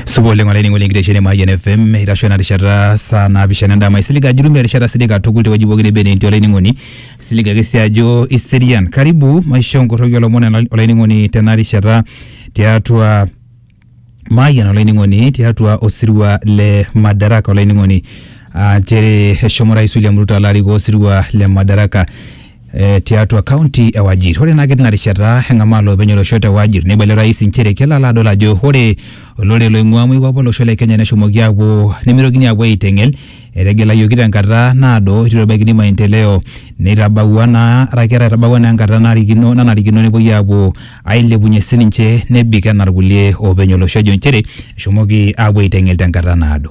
supa oleng olainining'oni enkitesheni e Mayian FM eitasho ena rishata saa naapishana endama isilig ajo itum erishata sidai katukul tewueji pooki neba enee etii olainining'oni isilig ake sii ajo iserian karibu maishoo nkorroki olomon ena- olainining'oni tena rishata tiatua Mayian olainining'oni tiatua osirua le Madaraka olainining'oni aa nchere eshomo Rais William Ruto alo arikoo osirua le Madaraka eh, tiatua kaunti e Wajir. Ore naa ketii ina rishata eng'amaa loopeny olosho te Wajir neibalie orais inchere kelo alo adol ajo ore olorere loing'ua moikwape olosho le Kenya neshomoki aapuo nemeitokini aapuo aiteng'el etegelayioki tenkata naado eitu ebaikini maendeleo neitabawua naa araki etabawua naa enkata narikino nanarikino nepuoi aapuo ailepunyie sininche nebik enaa irkulie oopeny olosho ejo inchere eshomoki aapuo aiteng'el tenkata naado.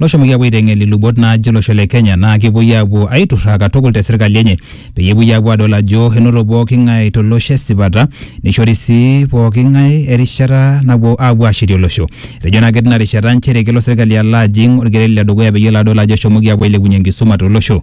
loshomoki apuo aiteng'el ilubot naaje olosho le Kenya naa kepuoi apuo aiturraa katukul te serkali enye peyie epuoi apuo adol ajo enoto pooki ng'ae to losho esipata neishori sii pooki ng'ae erishata napuo apuo aashetie olosho. Etejo naa ketii ina rishata nchere kelo serkali alo ajing orkereri le dukuya peyie elo adol ajo eshomoki apuo ailepunyie enkisuma to losho.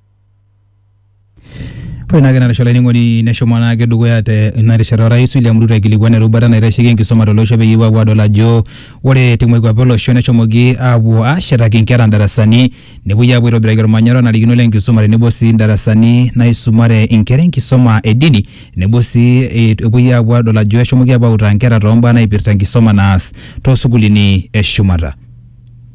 Ore naake narisho olainining'oni neshomo naake dukuya te ina rishata orais William Ruto aikilikuan erubata naitasheki enkisuma tolosho peyie epuo apuo adol ajo ore te moikuape olosho neshomoki apuo ashetaki inkera indarasani nepuoi apuo aitobiraki ormanyara onarikino lenkisuma tenebo sii indarasani naisumare inkera enkisuma e dini tenebo sii eh, epuoi apuo adol ajo eshomoki apuo autaa inkera tombaa naipirta enkisuma naas tosukulini eshumata.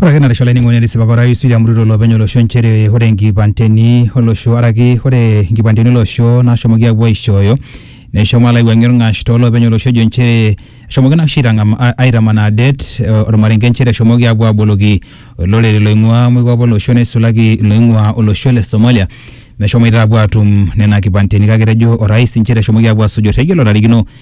Ore ake narisho olainining'oni etisipaka orais William Ruto olopeny olosho nchere ore inkipandeni olosho araki ore inkipandeni olosho naashomoki aapuo aishooyo neshomo alo aiwuang'ie orng'ash toolopeny olosho ejo nchere eshomoki naa oshi aitang'am- a- aitamanaa det eh, ormarenke nchere eshomoki aapuo aaboloki olorere loing'ua moikwape olosho neisulaki iloing'ua olosho le Somalia meshomoita aapuo aatum nena kipandeni kake etejo orais nchere eshomoki aapuo aasuj orrekie lotarikino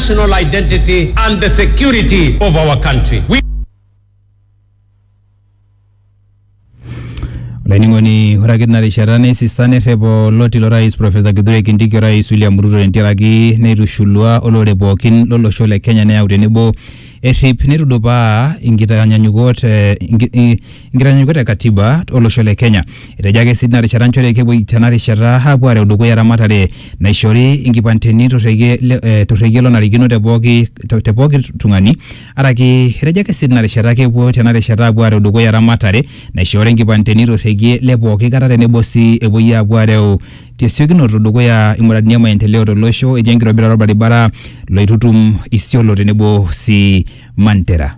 national identity and the security of our country. We olainining'oni ore ake tina rishata neisisa nerrep oloti lorais profesa kithure kindiki orais william ruto tentiaraki neitushulua olorere pookin lolosho le kenya neyau tenebo errip neitudupaa inkitanyanyukot eh, inki- i- Nkitanyanyukiot e Katiba olosho le Kenya. Etejo ake sii tina rishata nchere kepuoi tena rishata aapuo aareu dukuya eramatare naishori inkipanteni torrekie le- torrekie lonarikino te pooki te pooki tung'ani araki etejo ake sii tina rishata kepuo tena rishata aapuo aareu dukuya eramatare naishoori inkipanteni torrekie le pooki kata tenebo sii epuoi aapuo aareu tesiokinoto dukuya imuradini e maendeleo tolosho etii enkitobirata olbaribara loitutum Isiolo tenebo sii Mandera.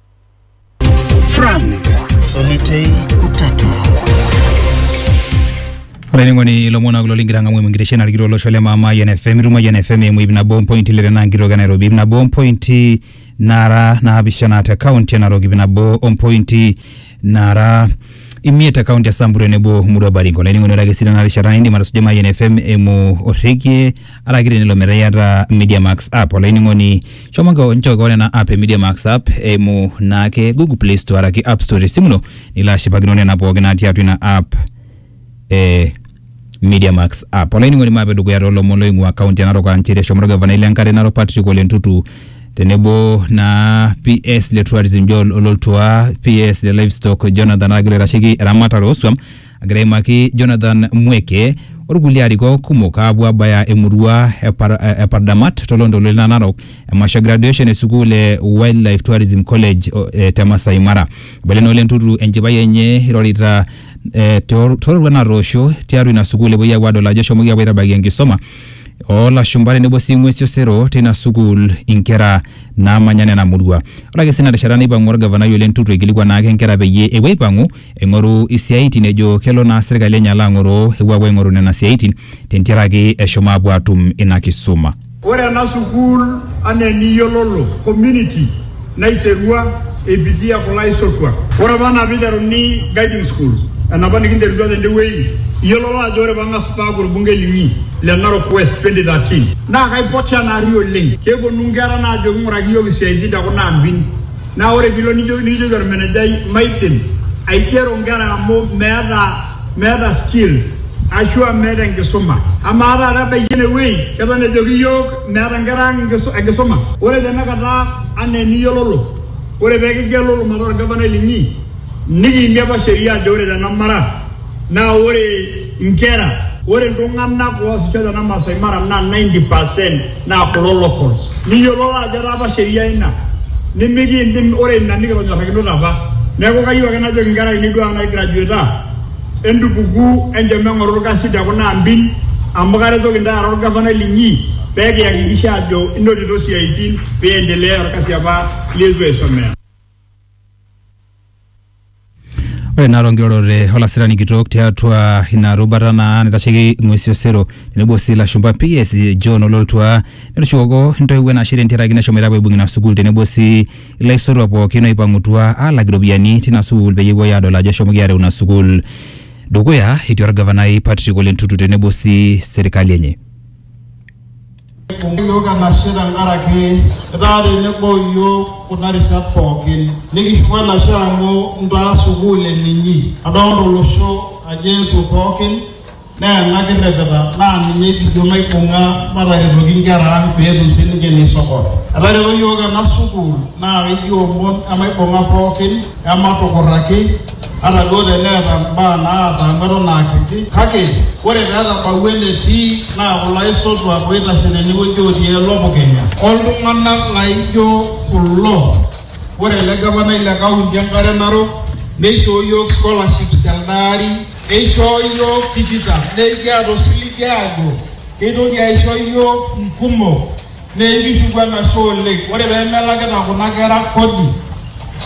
Frank Solitei Utata. olainining'oni ilomon kulo ligira ang'amu emingirishia narikito olosho le maama Yan FM itum Yan FM eimu ip nabo ompointi ile tenaa nkitok e Nairobi ip nabo ompointi nara naapishana te kaunti e Narok ip nabo ompointi nara imiet te kaunti e Samburu tenebo Murua Baringo. Olainining'oni ore ake sii tena rishata indim atusuja Mayian FM eimu orrekie araki tenelo metaa iyata Media Max app. Olainining'oni shomo nko- nchoo kewon ena app e Media Max app eimu naake Google Play Store araki App Store te simu ino nilo ashipakino nena pooki natii atua ina app. e Media Max app. Olainining'oni maape dukuya toolomon loing'ua kaunti e Narok aa nchere eshomo orgavanai le nkare Narok Patrick Ole Ntutu tenebo naa PS le tourism Joel Ololtua, PS le livestock Jonathan Agil oitasheki eramatare ooswam agira aimaki Jonathan Mweke orkulie arikok kumok aapuo aabaya emurua e Par- e Pardamat toloontoluo le Narok emasho e graduation e sukuul e Wildlife Tourism College o- e te Masai Mara. Eibalie naa Ole Ntutu enchipai enye eirorita eh, too- toororuat natoosho tiatua ina sukuul epuoi aapuo aadol ajo eshomoki aapuo aitabaiki enkisoma oolashumba tenebo sii ng'uesi osero teina sukuul inkera naamanya nena murua. Ore ake sii ina rishata neipang'u olgavanai Ole Ntutu aikilikuan naake inkera peyie epuo aipang'u aing'oru isiaitin ejo kelo naa serkali enye alo ang'oroo epuo aapuo aing'oru nena siaitin tentiaraki eshomo aapuo aatum ina kisuma. Ore ena sukuul anaa eniyiololo, community naiterua eipitia kulo aisotuak. Ore apa anaa peiteruni guiding school enapa nikinterutua tende wueji, iyiololo ajo ore pang'as paaku olbungei linyi le Narok West 2013 naa kaipoti ena ari oleng. Kepuonu nkera naajoki ng'uraki iyiook isiatin te kuna ambin. Naa ore piilo nijoki nikijoki olmenejai maidim aigero nkera amu meeta meeta skills ashua meeta enkisuma. Amaa taata ebaiki enewei keton ejoki iyiook meeta nkera ang enkisuma? Ore tenakata anaa eniyiololo ore pee kigelulu mataa olgavanai linyi nikiimie apa sheria ajo ore tena mara naa ore nkera, ore iltung'anak oosisho tena Maasai Mara naa 90% naa kulo local niyiolou ajo etaa apa sheria ina nimikiindim ore ina nikitonyorrakinote apa neeku kayieu ake najoki inkera ainei duo ang naigrajueta entupuku enchom eng'oru orkasi te kuna ambin amu karetoki intae ara orgavanai linyi pee kiyakikisha ajo inotito isiaitin pee iendelea orkasi apa lietu aisomea. Ore naa tonkirorot e olasirani kitok tiatua ina rubata naa naitasheki ing'uesi osero tenebo sii ilashumpa PS John Ololtua netushukoko intoiwuo enashe tentiaraki nashomoita apuo aibung ina sukuul tenebo sii ilaisotuak pookin oipang'utua aalak iropiyiani tina sukuul peyie epuoi aadol ajo eshomoki aareu ina sukuul dukuya etii orgavanai Patrick Ole Ntutu tenebo sii serkali enye. Eibung'a iyiook enashe tenkaraki itaa tenebo o iyiook kuna rishat pooki. Nikishuku enashe amu intaa sukuul eninyi. Adolita olosho ajo eetuo pooki naa ena kirripita naa ninye kijo maibung'a mataretoki inkera ang pee etum sii ninche ineisokora. Etareto iyiook ena sukuul naa ekiomon emaibung'a pooki Ematukurraki, ata duo teneeta mbaa naataanu eton aa kiti, kake ore pee etabawua enetii naa kulo aisotuak ooitashe tenewueji ootii elopukenya. O ltung'ana laaijo kulo, ore ele gavanai le kaunti e Nkare Narok neishoo iyiook scholarships telde ari, eishoo iyiook tikitam, naa ekiata osiligi aajo keitoki aisho iyiook nkumok. Neikishuku enashe oleng. Ore pee melakita kuna kera kodi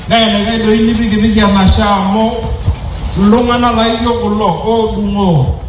naa enaikash doi nipikipiki enashe amu iltung'ana laaijo kulo oodung'oo.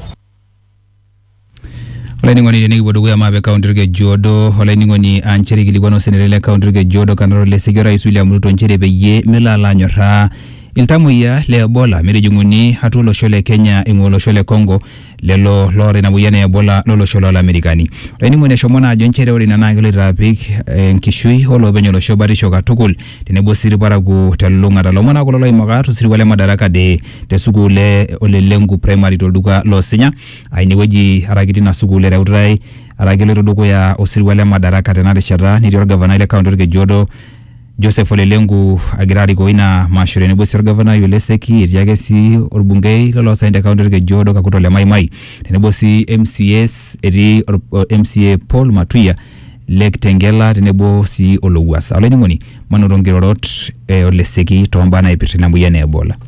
Olainining'oni tenikipuo dukuya maape kaunti Olkejuodo olainining'oni aa nchere eikilikuana osenetai le kaunti Olkejuodo Kanaro Leseki orais William Ruto nchere peyie melo alo anyorraa iltamoyia le Ebola metijing'uni atua olosho le Kenya eing'ua olosho le Congo lelo loota ina moyian e Ebola lolosho lolamerikani. Olainining'oni eshomo naa ajo nchere ore ina naa keloito apik enkishui olopeny olosho batisho katukul tenebo sii irparakuo telulung'ata. Lomon naa kulo loimaka tosirua le Madaraka Day te sukuul e Ole Lenku Primary tolduka loo Sinya aa inewueji araki tina sukuul ereutae araki eloito dukuya osirua le Madaraka tena rishata netii olgavanai le kaunti Olkejuodo Joseph Ole Lenku agira arikoo ina masho tenebo sii orgavanai Ole Seki etii ake sii orbungei loloosaen te kaunti Olkeju Odo Kakuto Ole Maimai tenebo sii MCAs etii or- o- MCA Paul Matuya le Kitengela tenebo sii Olowuasa. Olainining'oni manoto nkirorot e Ole Seki toombaa naipirta ina moyian e Ebola.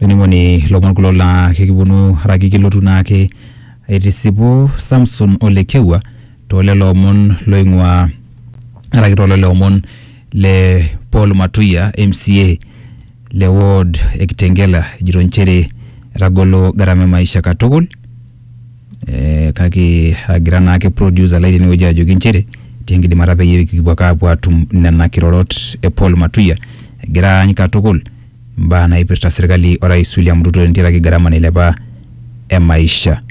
olainining'oni lomon kulo laa kekiponu araki ekilotu naake aitisipu Samson o Lekewua toolelo omon loing'ua araki toolelo omon le Paul Matuya MCA le ward e Kitengela ejito nchere etagolo gharama e maisha katukul eh, kake agira naake producer lai tenewueji ajoki nchere tenkidimata peyie kipuo ake apuo atum nena kirorot e Paul Matuya egira aany katukul imbaa naipirta serkali orais William Ruto tentiaraki gharama nailepa e maisha.